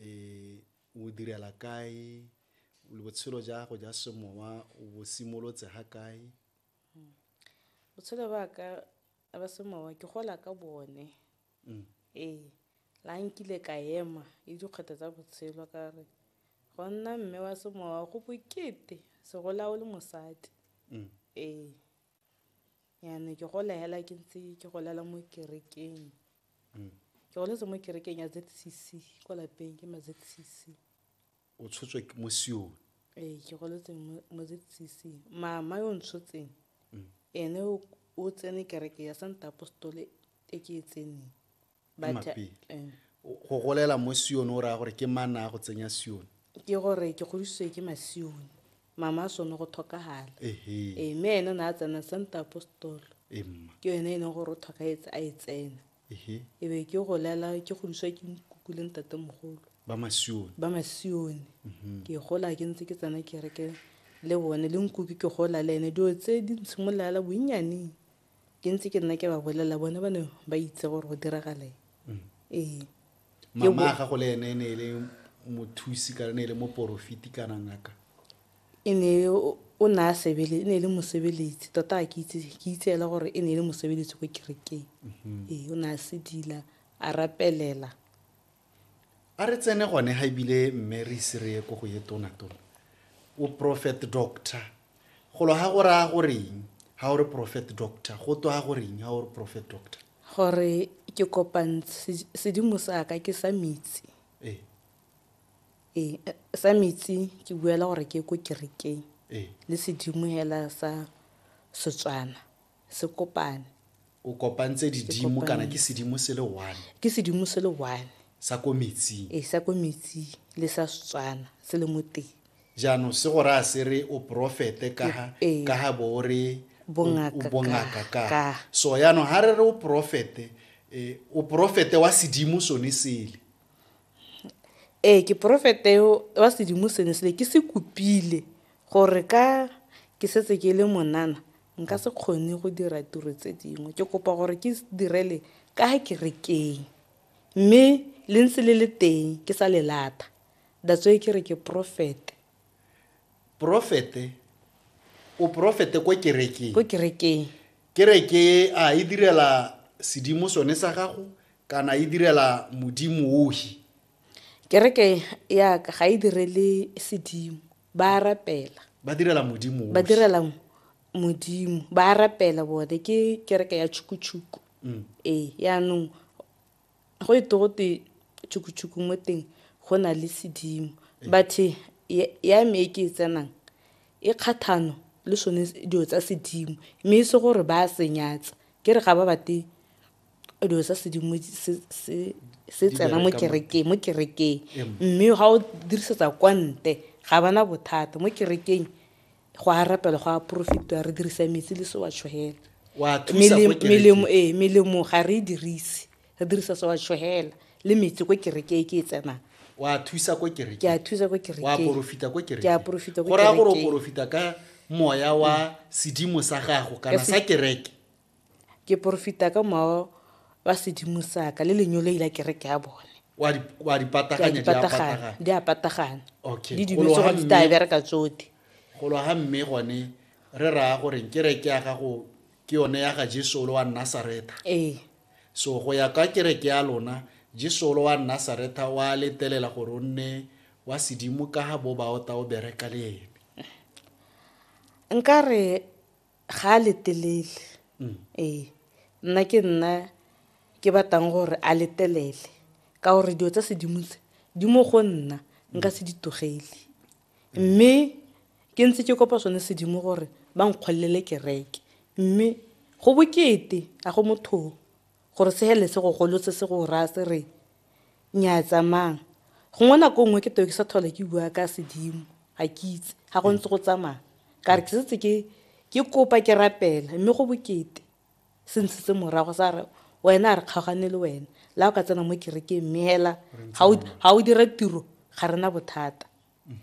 o direla kae, botshelo ja gago ja semowa o bo simolotse ga kae? Hmm. Botshelo ba ka ba semowa ke gola ka bone. Hmm. Ee, la nkile ka ema le dikgwetho tsa botshelo ka re go nna mme wa semowa go bokete segolawo le mosadi. Hmm. Ee. yane ke gola hela ke ntse ke golela mo kerekeng mm. ke goletse mo kerekeng ya zcc ko lapeng ke ma zcc o tshotswe mo sione ee ke goletse mo zcc mama yo ntshotseng mm. ene o tsene kereke ya santa apostole e ke e tseneng Ke mapele. Eh. Go golela mo Sione o raya gore ke mana a go tsenya Sione. Ke gore ke godisitswe ke Masione. Mama a sone go thokagala. Ehe. Eh, mme ene o ne a tsena Santo Apostolo. Emma. Ke yone e leng gore o thokagetse a e tsena. Ehe. E be ke golela ke godiswa ke nkuku le ntate mogolo. Ba Masione. Ba Masione. Ke gola ke ntse ke tsena kereke le bone le nkuku ke gola le ene dilo tse di ntshimololela bonnyaneng. ke ntse ke nna ke ba bolelela bone ba ne ba itse gore go diragale mm. ee mama ga go le ene e ne e le mothusi kana ne e le moporofiti kana ngaka e ne o ne a sebele e ne e le mosebeletsi tota ke itse ke itse ela gore e ne e le mosebeletsi ko kerekeng mm-hmm. ee o ne a sedila a rapelela a re tsene gone ga ebile mme re ise re ye ko go ye tonatona o prophet doctor golo ga go raya goreng ga o re prophet doctor go twa goreng ga o re prophet doctor gore ke kopang sedimo sa ka ke sa metsi ee ee eh, sa metsi ke buela gore ke ko kerekeng ee le sedimo hela sa setswana Se kopane. O kopantse didimo kana ke sedimo se le one. Ke sedimo se le one. Sa ko metsing. Ee, sa ko metsing le sa Setswana se le mo teng. Jaanong se go raya se re o porofete ka ha ka ha bo o re o bongaka ka. So jaanong ha re re o porofete o porofete wa sedimo sone sele. Ee, ke porofete wa sedimo sene sele ke se kopile gore ka ke setse ke le monana Nka se kgone go dira tiro tse dingwe. Ke kopa gore ke direle ka kerekeng. Mme le ntse le le teng, ke sa le lata. That's why ke re ke porofete. Porofete? O porofete ko kerekeng? Ko kerekeng. Kereke a e direla sedimo sone sa gago kana e direla modimo ohi? Kereke ya ka ga e direle sedimo. ba rapela ba direla modimo ba direla modimo ba rapela bone ke kereke ya tšhukutshuku mm. ee yaanong go e to gote tšhukutshuku mo teng go na le sedimo ee. bathe ya me e ke e tsenang e kgathano le sone dilo tsa sedimo mme e se gore ba a senyatsa ke re ga ba bate dilo tsa sedimo se tsena mo kerekeng mo kerekeng mme ga o dirisetsa kwa nte ga bana bothata mo kerekeng go a rapela go a profitwa re dirisa metsi le se wa tshogela melemo ee melemo ga re e dirise re dirisa se wa tshogela le metsi ko kerekeng ke e tsenang wa thusa ko kereke ke a thusa ko kereke wa profita ko kereke ke a profita ko kereke go ra gore o profita ka moya wa sedimo sa gago kana sa kereke Ke porofita ka mowa wa sedimo saka le lenyoloi la kereke ya bone wa di pataganya di a patagana di a patagana okay di dilo tsogo di tla bereka tsote go lo ha mme gone re raya gore kereke ya gago ke yone ya ga Jesu lo wa Nazareth ee so go ya ka kereke ya lona Jesu lo wa Nazareth wa letelela gore o nne wa sedimo ka ha bo ba o ta o bereka le ene nkare ga a letelele mm. ee nna ke nna ke batlang gore a letelele ka gore dilo tsa sedimo tse di mo go nna nka se di togele mme ke ntse ke kopa sone sedimo gore ba nkgolelele kereke mme go bokete a go mothong Gore se helele se go golotse se go raya se re nyaa tsamang. Gongwe nako nngwe ke teo ke sa tlhola ke bua ka sedimo ga ke itse ga go ntse go tsamaya ka re ke setse ke ke kopa ke rapela mme go bokete se ntshitse morago sa re wena a re kgaogane le wena la o ka tsena mo kerekeng mme hela ga o dira tiro ga rena bothata.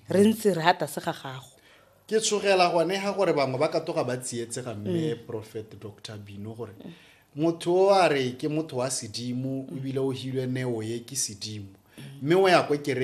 re ntse re ha tlase ga gago ke tshogela gone ga gore bangwe ba ka toga ba tsietsega mme mm. prophet dr bino gore motho o a re ke motho wa sedimo ebile o hilwe neo ye ke sedimo mme o ya ko kerekeng